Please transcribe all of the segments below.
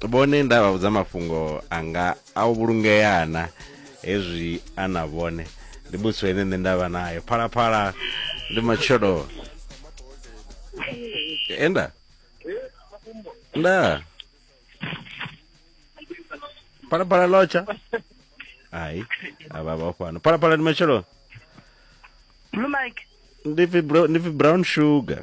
vhone nda vha vhudza mafhungo anga a u vhulungea na hezwi a na vhone ndi muthu ene nṋe nda vha naye phalaphala ndi matshelo enda nda phalaphala lotsha hai avha vha fhano phalaphala ndi matshelo Blue Mike. ndi pfi bro- ndi pfi brown sugar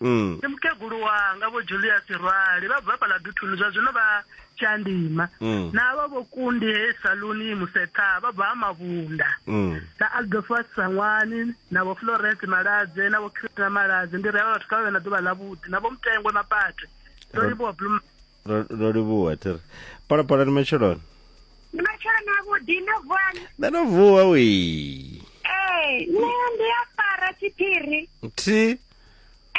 mm. ndi mukegulu wanga vho julius rwali vha bva fhala duthuni zwa zwino vha tshandima mm. na vha vho kundi he saluni musetha vha bva ha mavhunda mm. na aldofas sangwani na vho florence maladze na vho christina maladze ndi rea vhathu kha vha vhe na ḓuvha ḽavhuḓi na vho mutengwe mapate ro livhuwa blum ro livhuwa thiri palapala ni matsheloni ndi matsheloni avhuḓi ndo vuwani nṋe ndo vuwa wi ee nṋe ndi a fara tshiphiri thi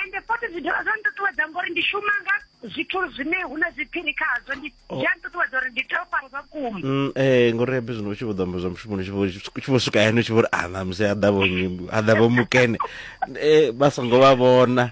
ende fothi zwi dovha zwa nṱuṱuwedza ngori ndi shuma nga zwithu zwine hu na zwiphiri khazwo ndi oh. zwi a nṱuṱuwedza uri ndi tea u fara zwa vhukuma mm, ee ngori ya bizwino u tshi vho ḓo amba zwa mushumoni tshi vho swika yani u tshi vho ri ana ah, musi a ḓa vho a ḓa vho mukene eh, vha songo vha vhona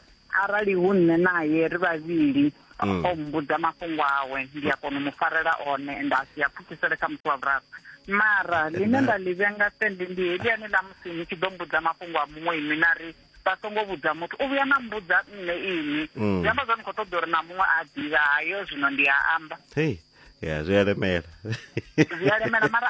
arali hu nṋe naye ri vhavhili mm. o mbudza mafhungo awe ndi a kona u mu farela one ende a si a pfukisele kha muthu wa vhuraru mara ḽine nda ḽi vhenga sende ndi heliani ḽa musi ni tshi ḓo mbudza mafhungo a muṅwe inwi na ri vha songo vhudza muthu u vhuya na mbudza nṋe inwi mm. zwi amba zwa ni khou ṱoḓa uri na muṅwe a ḓivha hayo zwino ndi a amba ya zwi a lemela zwi a lemela mara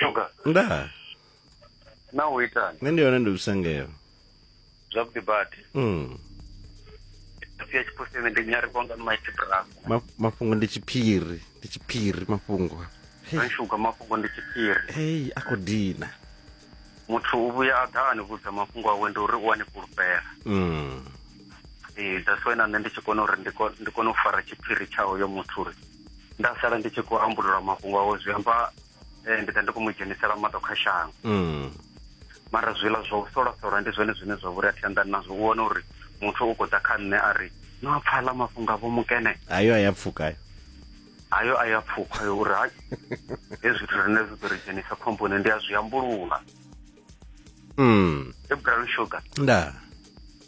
Shuga, nda na u itani? nṋe ndi yone ndi lusengelo Zwavhuḓi badi. mm. Sia tshipusini ndi nyari kwanga ni maiti bravo. Ma, mafhungo ndi tshiphiri ndi tshiphiri mafhungo Ri shuga mafhungo ndi tshiphiri. hei a khou dina Muthu u vhuya a ḓa a ni vhudza mafhungo awe ndi uri u a ni fhulufhela. mm. Ee, that's why na nṋe ndi tshi kona uri ndi ko- ndi kone u fara tshiphiri tsha hoyo muthu uri nda sala ndi tshi khou ambulula mafhungo awo zwi amba eh, ndi ḓa ndi khou mu dzhenisela maṱo kha shango mm. mara zwiḽa zwa u solasola ndi zwone zwine zwa vhori a thi anḓani nazwo u wana uri muthu u khou ḓa kha nṋe a ri no a pfala mafhungo avho mukene ayo a ya pfuka ayo ayo a ya pfukha yo uri hai hezwi zwithu rine zwi ḓo ri dzhenisa khomboni ndi a zwi ambulula mm. ebral sugar ndaa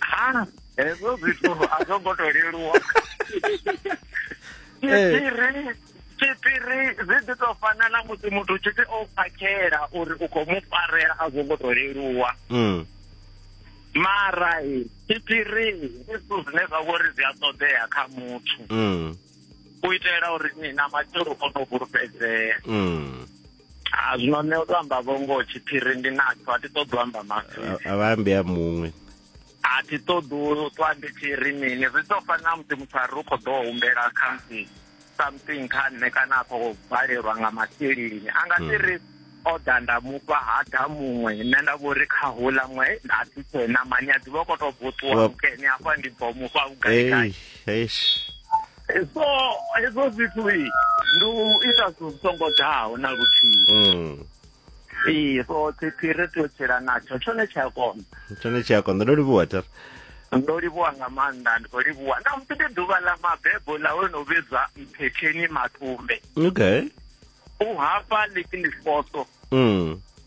ha hezwo zwithu a zwo ngo to leluwa tshiphiri eh. tshiphiri zwi ḓi to fana na musi muthu tshi ti o phakhela uri u khou mu farela a zwo ngo to leluwa mm. mara tshiphiri ndi zwithu zwine zwa vhori zwi a ṱoḓea kha muthu mm. u itela uri ni na matshelo o no fhulufhedzea mm. a zwino nṋe u to amba vhongo tshiphiri ndi natsho a thi ṱoḓi u amba mafhiri a vha ambe a muṅwe a thi ṱoḓi u ṱwa ndi tshi ri mini zwi ḓo fana na musi muthu a ri u khou ḓo humbela khamusi something kha nṋe kana a khou balelwa nga masheleni a nga si hmm. ri o ḓa nda mufha ha ḓa muṅwe nṋe nda vho ri kha hula ṅwe nda thi tshena mani a ḓivha u khou tou bvuṱuwa mukene afha ndi bvo mufha vhugaigai so hezwo zwithu ndi u ita zwithu songo ḓaho na luthihi mm. ee so tsipfi ri tea u tshila natsho tshone tshi a kona tshone tshi a kona ndo livhuwa tar ndo livhuwa nga maanḓa ndi khou livhuwa na musi ndi ḓuvha ḽa mabebo ḽa ho no vhidzwa mphetheni matumbe okay u hafha ḽi ndi foso mm.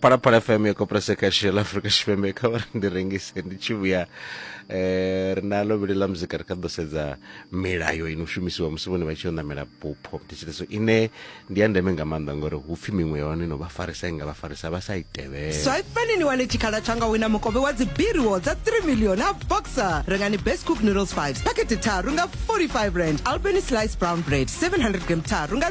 parapara fm yo kopresa kashi la afrika tshipembe kha vhari ndi rengise ndi tshi vhuya eh ri na lovhili ḽa muzika ri kha ḓo sedza milayo ino shumisiwa musi vhone vha tshi yo ṋamela bupho thetshelso ine ndi ya ndeme nga maanḓa ngori hu pfi miṅwe ya hone no vha farisa i nga vha farisa vha sa i tevhele swipani ni wane tshikhala tsha nga wina mukovhe wa dzibiriwo dza 3 million a boxer rengani best cook noodles 5 pakete tharu nga 45 rand albany slice brown bread 700 gram tharu nga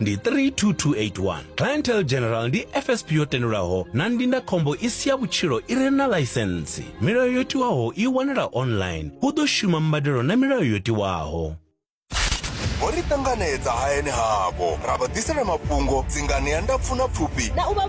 ndi 32281 clientele general ndi fsp yo tendelwaho na ndindakhombo i si ya vhutshilo i re na laisensi milayo yo tiwaho i wanala online hu ḓo shuma mbadelo na milayo yo tiwaho vho ri ṱanganedza hayani havho ra vha ḓisela mafhungo dzingani ya ndapfu na pfufhi na u vha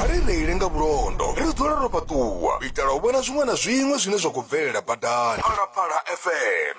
a ri reile nga vhulondo ri dzule ro fhaṱuwa u itela u vhona zwiṅwe na zwiṅwe zwine zwa khou bvelela badani phalaphala fm